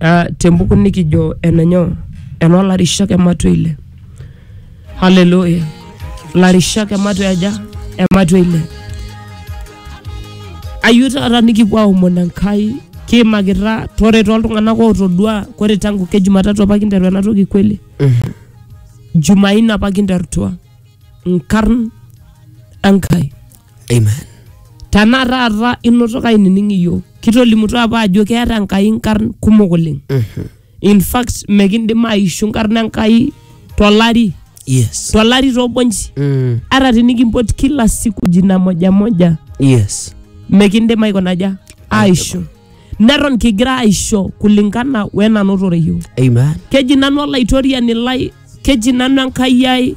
uh, tembuku nikijo enenyo enolarishak ematua ile haleluya larishak ematua aja ematua ile ayieu taata nikipuo aomon enkai kiimakita tore toltung'anak ootodua kore tangu ke jumatatu apa kinteru ena toki kweli jumaine apa kinterutua nkarn enkai Amen. tenaa taata inoto kainining iyiook kitolimutuo apa ajo keeta enkai nkarn kumok oleng in fact mekindim aishu nkarn enkai tolari Yes. tolari tobonji Mm. hata tinikimpot kila siku jina moja moja Yes. mekindim aikonaja aisho neton kigira aisho kulingana wenanotore yiok Amen. keji nanu olaitoriani lai keji nanu enkai ai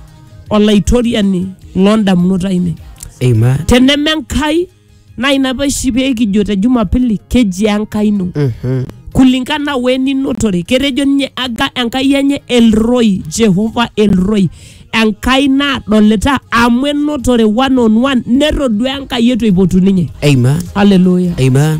olaitoriani loondamunot ainei Amen. teneme enkai naa ina peshi pee kijo te jumapili keji enkai ino Mhm. kulingana weninotore ketejo ninye aga enkai enye elroi jehova elroi enkai naadolita amu enotore one on one netodua enkai etu eipotu ninye Amen. haleluya Amen.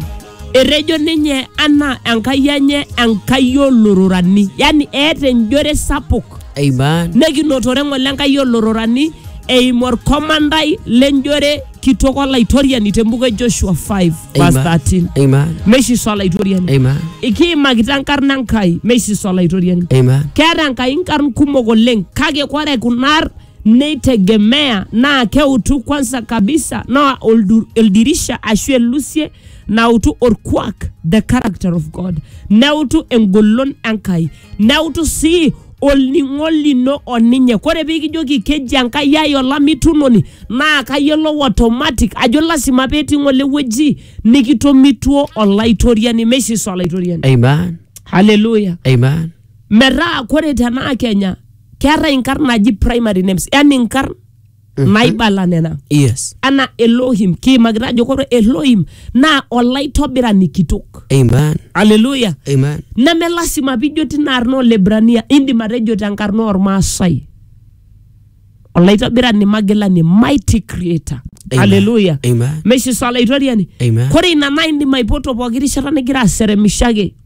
Etejo ninye anaa Enkai enye Enkai olororani, yaani eeta enjore sapuk Amen. nekinotore ng'ole Enkai olororani eimu orkomandai lenjore kitok olaitoriani tembuku e Joshua 5 verse Amen. 13 Amen. meisisa olaitoriani Amen. ikiimakita enkarna Enkai meisisa olaitoriani Amen. keeta Enkai nkarn kumok oleng kake kore kunar neitegemea naa keutu kwanza kabisa naa oldu- oldirisha ashu elusie nautu orkuak the character of god neutu engolon enkai neutu sii olning'o lino oninye kore pikijoki keji enkai ai olamitunoni naa kayiolou automatic ajo lasima petii ng'ole wueji nikitomituo olaitoriani meishisa olaitoriani Amen. haleluya Amen. metaa kore tenaa kenya keetae inkarn naji primary names yani inkarn naibala nena yes anaa elohim kiimakita ajo kore elohim naa olaitobirani kitok amen aleluya amen neme lasima pijo tina arna olebrania indim atejo tenkarna ormaasai olaitobirani magilani mighty creator Amen. aleluya Amen. meshiso olaitoriani Amen. kore ina naa indim aipoto pooki rishata nigira aseremishaki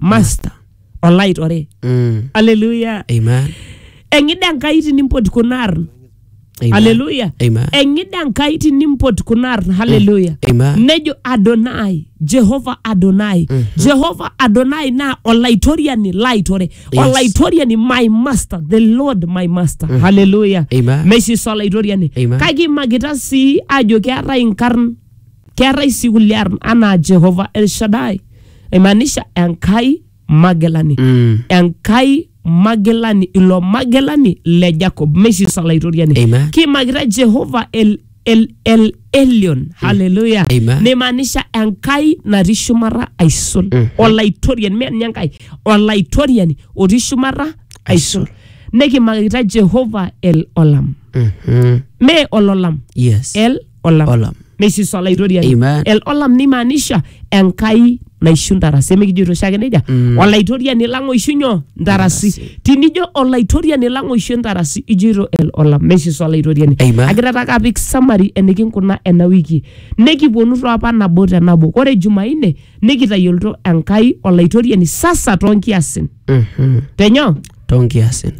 master olaitore Mm. aleluya Amen. eng'ida enkai tinimpot kuna arn Amen. aleluya Amen. eng'ida enkai tinimpot kuna arn haleluya Amen. nejo adonai jehova adonai jehova adonai naa olaitoriani laitore Yes. olaitoriani my master the lord my master haleluya Amen. meshiso olaitoriani Amen. kake imakita sii ajo keetae inkarn keetae sii kulie arn anaa jehova elshadai aimaanisha enkai magilani Mm. enkai magilani ilo magilani le jacob meishiso olaitoriani Amen. kiimakita jehova el, el, el elion haleluya Amen. neimaanisha enkai natii shumata aisul Mhm. olaitoriani mee ninye enkai olaitoriani otii shumata aisul nekimakita jehova el olam Mhm. mee ololam Yes. el olam olam neishisu olaitoriani Amen. El- olam nimaanisha enkai naishu ntarasi emikijoito oshiake nejia Mm. olaitoriani lang oishu nyoo ntarasi Ntarasi. tinijo olaitoriani lang oishu ntarasi ijoito el olam neishisu olaitoriani Amen. agira taake apik samari enikinkuna ena wiki nikiponu toapa nabo te nabo ore jumaine nikitayiolito enkai olaitoriani sasa toonkiasin Mhm. tenyoo too nkiasin.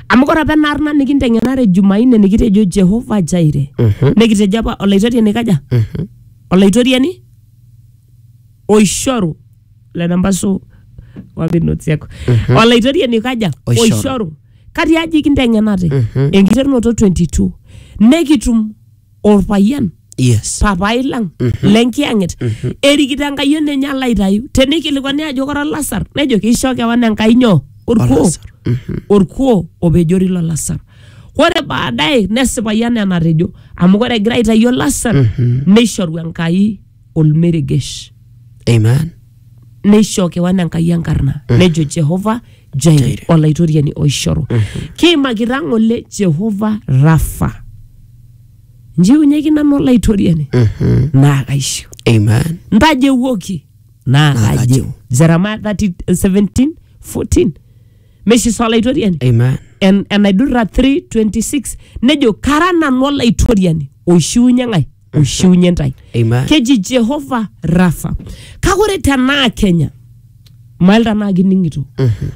Amu ore apa ena arna nikinteng'enare Jumanne nikitejo Jehovah Jireh. Mhm. Nikitejo apa olaitoriani kaja? Mhm. Olaitoriani oishoru lena mbasu wapi notes yako. Olaitoriani kaja? Oishoru. Oishoru. Katiaji kinteng'enate? Mhm. Enkiterunoto 22. Nekitum olpayian yes papai lang lenkiyang'et erikito enkai ene enye alo aitayu teneikilikuani ajo kora lasar nejo keisho kewan enkai nyoo orkuo Olasar. orkuo opejori lo lasar ore baadaye nesipayu anaa enatejo amu ore egira aitayu olasar neishoru enkai olmeregesh Amen. neishoo kewan enkai enkarna nejo jehova jaire Jaire. olaitoriani oishoru kiimakita ng'ole jehova rafa njiunyeki nanu olaitoriani Mhm. naa kaishiu Amen. ntajewuoki naa Naa kajeu kajeu. jeremia 30 17 14 meshiso olaitoriani Amen. En- enaidurra 3 26 nejo kara nanu olaitoriani oishiunye ng'ae oishiunye ntae Amen. keji jehova rafa kake ore tenaa kenya mail tenaa kining'ito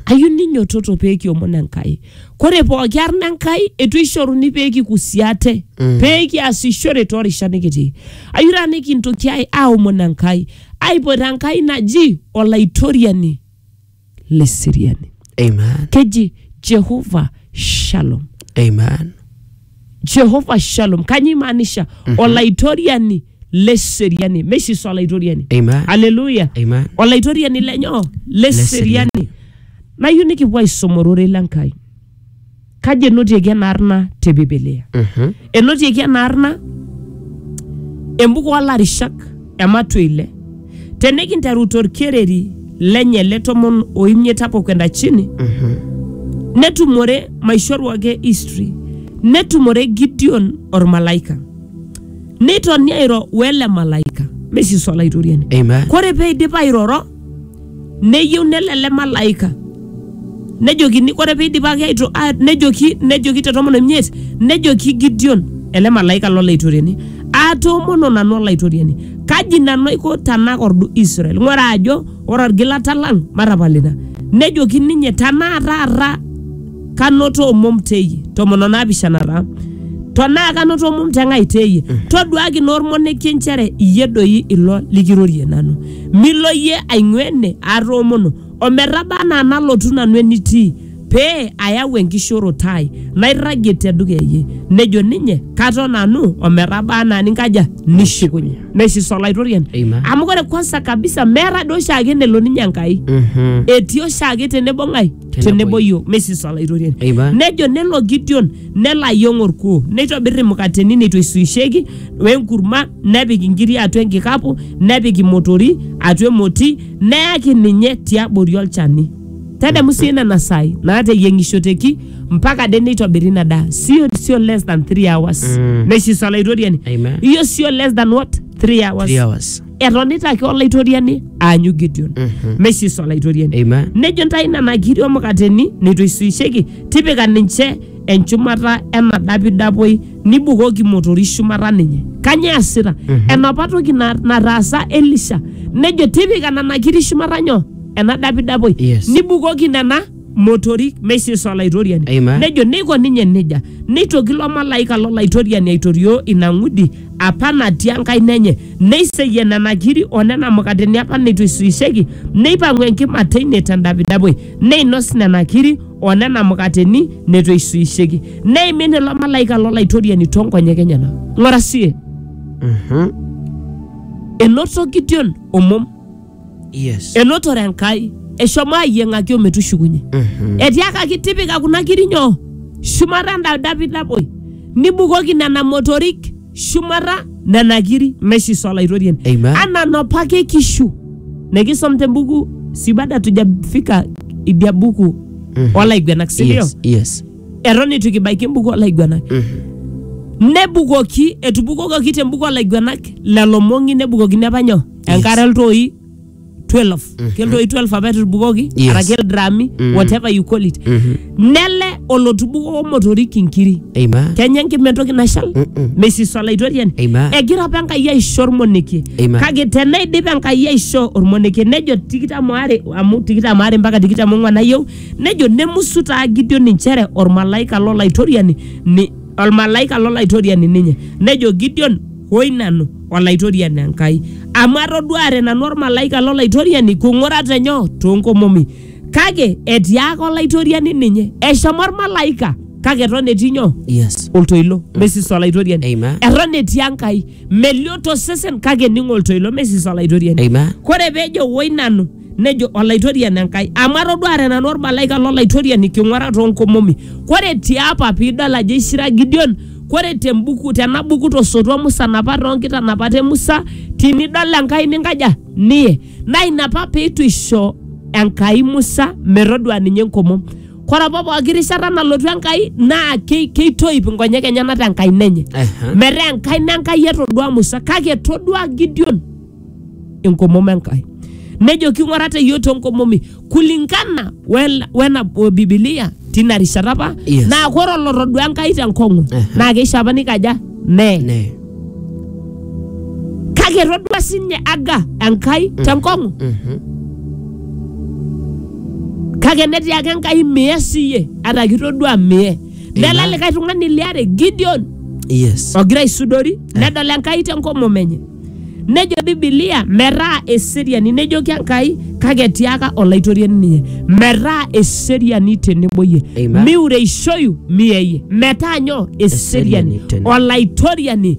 ayieu ninyototo pee kiomon enkai kore pooki arna enkai etu ishoruni pee kikusi ate pee kiasishore toorishat nikitii ayieu taa nikintoki ai- aomon enkai aipot enkai naji olaitoriani le seriani Amen. keji jehova shalom Amen. jehova shalom kanyio imaanisha olaitoriani le seriani mesis olaitoriani Amen. aleluya Amen. olaitoriani lenyo le seriani nayieu nikipuo aisum ororei le nkai Kaji enotieki ena arna te Biblia? Mhm. Enotieki ena arna embuku olarishak ematua ile. Tenikinteru torkereri lenye le tomon o imiet hapo kwenda chini, Mhm. netumore maishoru ake history netumore Gideon ormalaika neitoni airo wele malaika mesisi olaitoriani Amen. kore peidip airoro neyieu nelo ele malaika nejokini ore piidipaki aito- a- nejoki nejoki te tomon omiet nejoki Gideon ele malaika lolaitoriani atoomono nanu olaitoriani kaji nanu aiko tanakordu Israel ng'ura ajo ore orgilata lang matapal ina nejoki ninye tanaa taata kanoto omom teyie tomon o naapishana taa tonaa kanoto omom te ng'ai teyie toduaki naa olmonekie nchere iyie doi ilo likirorie nanu milo iyie aing'ua ene atoomono ometaba anaa nalotu nanu enitii pee ayau enkishooroto ai nairragie te dukuya iyie nejo ninye katon nanu ometaba anaa ninkaja nishukunye nesis olaitoriani Amen. amu ore kwanza kabisa meeta doi oshiake enelo ninye enkai Mhm. etii oshiake tenebo ng'ai tenebo yiok mesis olaitoriani Eiba. nejo nelo gideon nelo ayieng orkuo neitobir imukateni neitu eisuisheki wenkurma nepik inkiri atua enkikapu nepik imotori atua emoti neyaki ninye tiabori olchani tadamu sii nena saai naateyieng'ishoteki mpaka de neitobiri ina daa sio sio less than 3 hours Mm. mesis olaitoriani Amen. iyo sio less than what 3 hours Three hours. etonita ake olaitoriani aanyu gideon mesis olaitoriani Amen. nejo ntae nena kiri omukateni neitu eisuisheki tipika ninche enchumata ena dapidapoi nibukoki motori shumata ninye kanyoo easita enapa toki na- nataasa elisha nejo tipika nena kiri shumata nyoo ena dapidapoi Yes. nibukoki nena motorik meisisa olaitoriani Amen. nejo neiko ninye nejia neitoki ilo malaika lolaitoriani aitorioo ina ng'udi apa natii enkaina enye neiseyie nena kiri o nena mukateni apa neitu eisuisheki neipang'u enkima teine tendapidapoi neinos nena kiri o nena mukateni neitu eisuisheki neimin ilo malaika lolaitoriani toonkonyek enyenak ng'ora sie Mhm. enoto gideon omom Yes. enotore enkai eshomo ayieng'aki ometushukunye Mhm. etiakaki tipika kuna kiri nyoo shumata enda dapi naboi nibukoki nena motorik shumata nena kiri meshiso olaitoriani Amen. anaa nopa ake kishu nekisom tembuku si bado hatujafika idia buku Mhm. olaiguenak sindio Yes. Yes. eton eitu kibaiki embuku olaiguenak Mhm. nebukoki etubukokoki tembuku olaiguenak lelo mong'i nebukokini apa nyoo enkare iltoi 12 keltoi 12 apa etubukoki Yes. araki ildrami whatever you call it nele olotubuko motorik inkiri Amen. kenya enkima entoki nashal Mm-mm. mesis olaitoriani Amen. egira apa enkai aisho ormonekie Amen. kake tenaidip enkai aisho ormonekie nejo tikitam are amu tikitam are mpaka tikitam ong'uan ayieu nejo nemusu taa gideon inchere ormalaika lolaitoriani ni- ormalaika lolaitoriani ninye nejo gideon hoi nanu Olaitoriani Enkai, amu atoduaare nanu olmalaika lo Laitoriani kung'urata enyo too nkomomi. Kake etiaaka Olaitoriani ninye, Eshomo olmalaika, kake eton etii nyoo? Yes. Oltoilo, mesis Olaitoriani. Amen. Eton etii Enkai, melio to sesen kake ening'o oltoilo, mesis Olaitoriani. Amen. Kore peejo woi nanu nejo olaitoriani enkai amu atoduare nanu ormalaika lolaitoriani king'uara toonkomomi kore tiapa piidol ajo eishira gideon kore tembuku tena buku tosotua musa napa toonkitanapat e musa tinidol enkai ninkaja niye naa ina apa peitu isho enkai musa metodua ninye enkomom kore apa pooki rishata nalotu enkai naa kei- keitoip inkonyek enyenak tenkaina enye Ehe. metaa enkaina enkai etodua musa kake etodua gideon enkomom Enkai. Nejoki ng'ura te iyiook toonkomomi kulingana wel- wena o Bibilia tina rishata apa Yes. naa ore olotodua Enkai tenkong'u Aha. naa keisho apa nikaja nee Nee. kake etodua sinye Aga Enkai tenkong'u Mhm. kake netii ake Enkai mie siye ata kitodua mie nela Amen. likae tung'ani liare Gideon Yes. ogira aisudori nedol Enkai tenkomom enye Nejo Bibilia metaa eseriani, nejoki Enkai kake etiaka olaitoriani ninye metaa eseriani tenebo iyie Amen. miureishoyu miyeyie metaa nyoo eseriani Eseriani tenebo. olaitoriani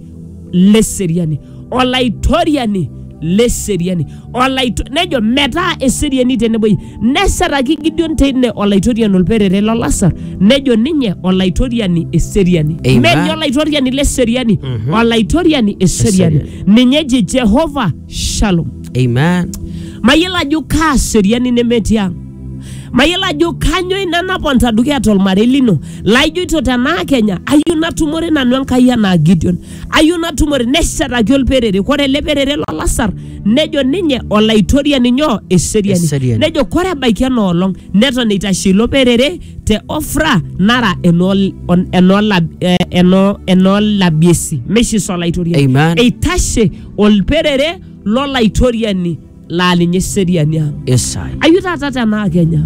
leseriani olaitoriani leseriani olaitu nejo metaa eseriani tenebo iyie neshetaki Gideon teine olaitoriani olperere lo Lasar nejo ninye olaitoriani eseriani Amen. meni olaitoriani le seriani olaitoriani eseriani ninye eji Jehova Shalom Amen. mayiolo ajo kaa seriani nemetii ang mayiolo ajo kanyoo ina naponta dukuya tolmarei lino laijoito tenaa kenya ayieu natumore nanu enkai anaa Gideon ayieu natumore neshetaki olperere kore ele perere lo lasar nejo ninye olaitoriani nyoo eseriani Eseriani. nejo kore ebaiki enoolong neton eitashe ilo perere te ofra nara enool- on- enoola- eh, eno- enoolabiesi meishisa olaitoriani Amen. eitashe olperere lolaitoriani laa ninye eseriani ang. Isai. Ayu taata tenaa Kenya,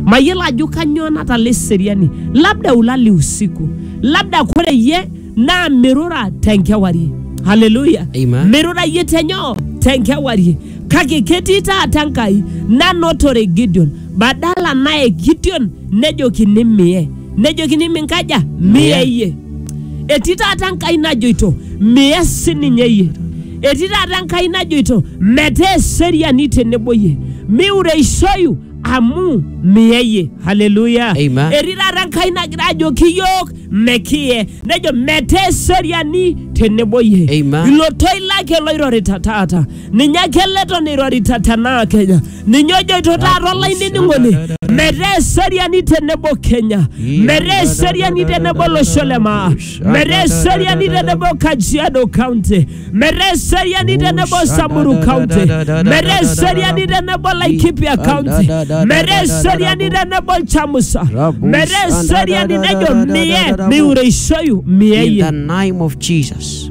mayiolo ajo kanyoo natala eseriani, labda ulali usiku, labda kore iyie naa mirura tenkewarie. Haleluya! Amen. Mirura iyie tenyoo? Tenkewarie. Kake ketii taata Enkai nanotore Gideon, badala naye Gideon nejokini miye. nejokini minkaja miya iyie etii taata enkai najoito miya sininye iyie etii taata enkai najoito metaa eseriani tenebo iyie miureishoyu amu miya iyie haleluya Amen. etii taata enkai nagira ajoki iyiook mekiye nejo metaa eseriani tenebo iyie Amen. ilo toi lake loirorita taata ninye ake eleton eirorita tenaa Kenya. Ninye ojoito taata olainining'oni metaa eseriani tenebo Kenya, metaa eseriani tenebo olosho le maa, metaa eseriani tenebo Kajiado County, metaa eseriani tenebo Samburu County, metaa eseriani tenebo Laikipia County, metaa eseriani tenebo Chamusa, metaa eseriani nejo mie miureishoyu mie In the yie. name of Jesus.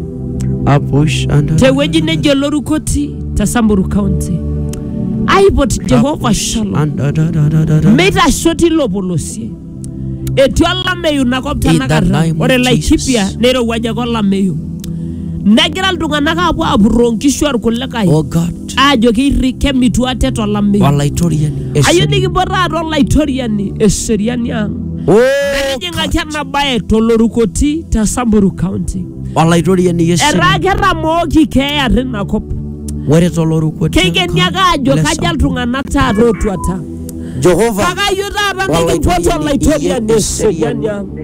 Apush and tewueji nejo lorukoti te samburu county aipot jehova shalom meitasho tilo polosie etii olameyu inakop In the tanakata name of ore laikipia Jesus. neirowuaja ake olameyu negira iltung'anak aapuo apurroo nkishu orkulikae Oh God. aajo keirri kemitu ate tolameyu Olaitoriani. ayieu Eseriani. nikipuo taata olaitoriani eseriani ang Oh, nijing'aki ena baye tolorukoti te samburu county Olaitoriani etaa eseriani. ketamooki keeya tina kop Ore toloruko. keikeni ake aajo Le kaja Samburu. iltung'anak taata ootuata Jehova. kake ayieu taata Olaitoriani nikimpot olaitoriani iye eseriani eseriani. ang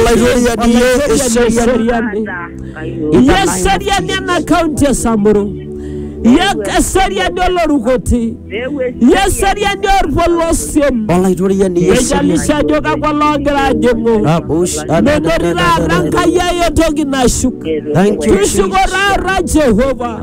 Olaitoriani ye eseriani. Iye seriani ena kaunti e Samburu. Iye eseriani olorukoti. Iye eseriani orpolosien. Olaitoriani ye eseriani. Ejalisho ajo kakwa loogira ajing'u. Rabush. Metorito aata Enkai ai entoki nashuk. Thank you, Jesus. Tushuko taata Jehova.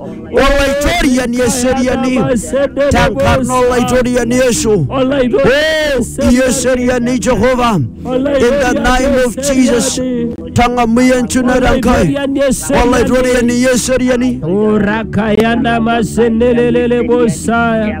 Olaitoriani eseriani tenkarna Olaitoriani Yesu. Oh, ieseriani Jehova. In the name of Jesus. Tang'amuye enchunata Enkai. Olaitoriani ieseriani. Urakayana masenelelele bosaya.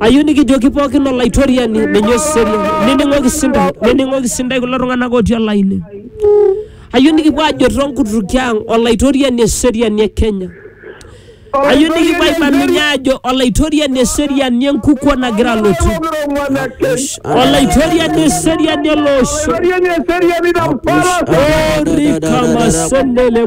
ayieu nikijoki pookin olaitoriani ninye oserian nening'oki sindai nening'oki sindai kulo tung'anak otii olaini ayieu nikipuo ajo tonkutuki ang olaitoriani eseriani e kenya ayieu nikipuo aibaminye ajo olaitoriani eseriani enkukuo nagira alotu olaitoriani eseriani ele osho orikamasendele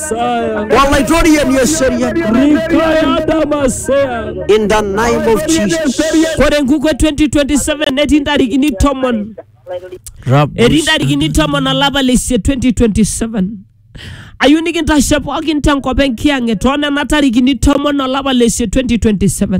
Saya. Wallahi Dorian Yeserian. Rikaya Damasea. In the name of Jesus. Kore nguko 2027 netii ntarikini tomon. Etii ntarikini tomon olapa le isiet 2027. Ayieu nikintashe pookin tenkop enkiyang'et too nena tarikini tomon olapa le isiet 2027.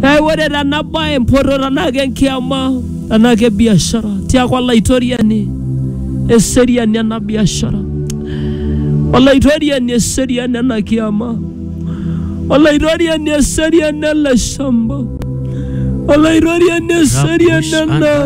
Kake ore tena bae mpoto tenaa ke nkiyama tenaa ke biashara tiaku olaitoriani eseriani ena biashara olaitoriani eseriani ena kiyama olaitoriani eseriani ele shamba olaitoriani eseriani ena